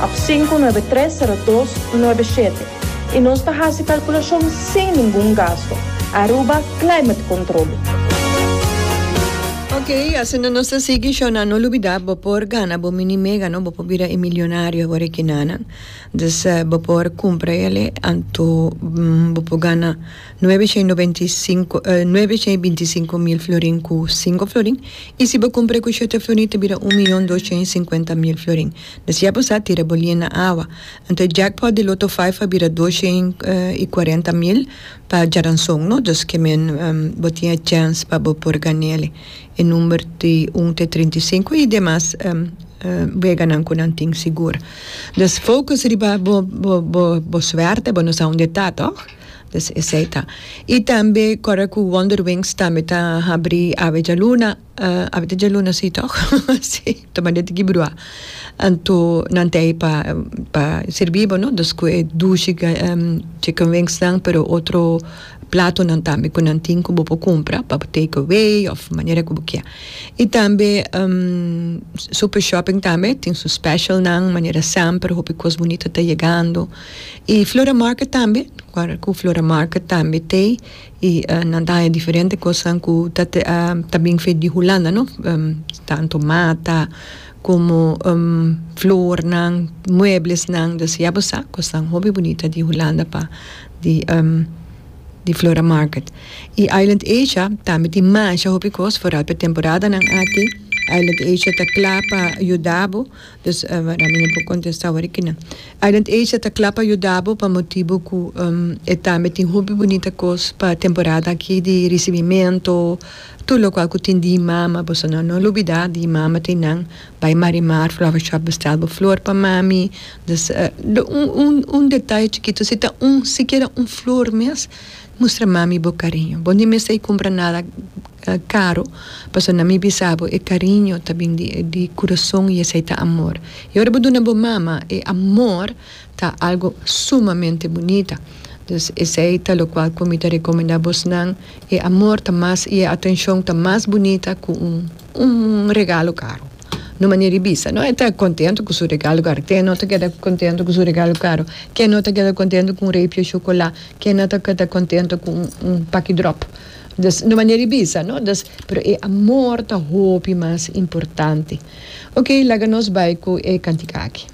Ap sinku nuebe tres sero dos nuebe shete i nos ta hasi kalkulashon sin ningun gasto. Aruba Climate Controle. Ok, asina nos ta sigui show nan no lubida bo por gana bo mini mega no bo por bira e milionario awor e kinanan dus bo por kumpra ele anto bo por gana nuebe shei noventa i sinku nuebe shei binti sinku mil florin ku sinku florin i si bo kumpra e ku shete florin ta bira un miyon dos shei sinkuenta mil florin. Na siya bo sa tira bo lien na awa. Anto e jackpot di Lotto Five a bira dos shen i kuarenta mil pa djaranson no, dus ke men bo tin e chèns pa bo por gan'ele. E number di un te trinta i sinku i demas weganan ku nan tin sigur. Dus focus riba bo bo bo bo suerte, bo no sa unda e ta tòg? Dus esei ta. I tambe kòrda ku Wonderwings tambe ta habri awe djaluna. Abit e djaluna si toch si ta manda di kibrua anto nan ta ei pa sirbibo no dus ku e dushi chicken wings nan pero otro platonan tambe ku nan tin ku bo por kumpra pa bo take away of manera ku bo kia i tambe super shopping tambe tin su special nan manera semper hopi kos bunita ta yegando i flora market tambe ku flora market tambe tei Y nan ta haña diferente cosnan cu ta bin feito di Hulanda, no? Tanto mata como flornan, mueblesnan. Dus ya bo sa cosnan hopi bunita di Hulanda pa di Flora Market. Y Island Asia tambe tin masha hopi cos, foral pa e temporadanan aki. Island Asia ta cla pa yuda bo. Pues wak mi no por contesta awor aki nan. Island Asia ta cla pa yuda bo pa motibo cu e tambe tin hopi bunita cos pa temporada aki di ricibimento, tur locual cu tin Di Mama, boso no lo olbida Di Mama tin nan, bay Marimar Flower Shop bestel bo flor pa mami, un detaye chikito si ta un sikiera un flor mes. Mustra mami bo cariño. Bo ni mester cumpra nada caro pasobra na mi bisa bo e cariño ta bin di curazon y esey ta amor. Y ora bo duna bo mama e amor ta algo sumamente bunita. Dus esey ta locual cu mi ta recomenda bosnan e amor ta mas y e atencion ta mas bunita cu un regalo caro. No manera y bisa no e ta contento cu su regalo caro. Ke no ta keda contento cu su regalo caro? Ke no ta keda contento cu un reepje chocola? kena ta keda kontento ku un paki dròp dus no manera i bisa no dus pero e amor ta hopi mas importante oke laga nos bai ku e kantika aki.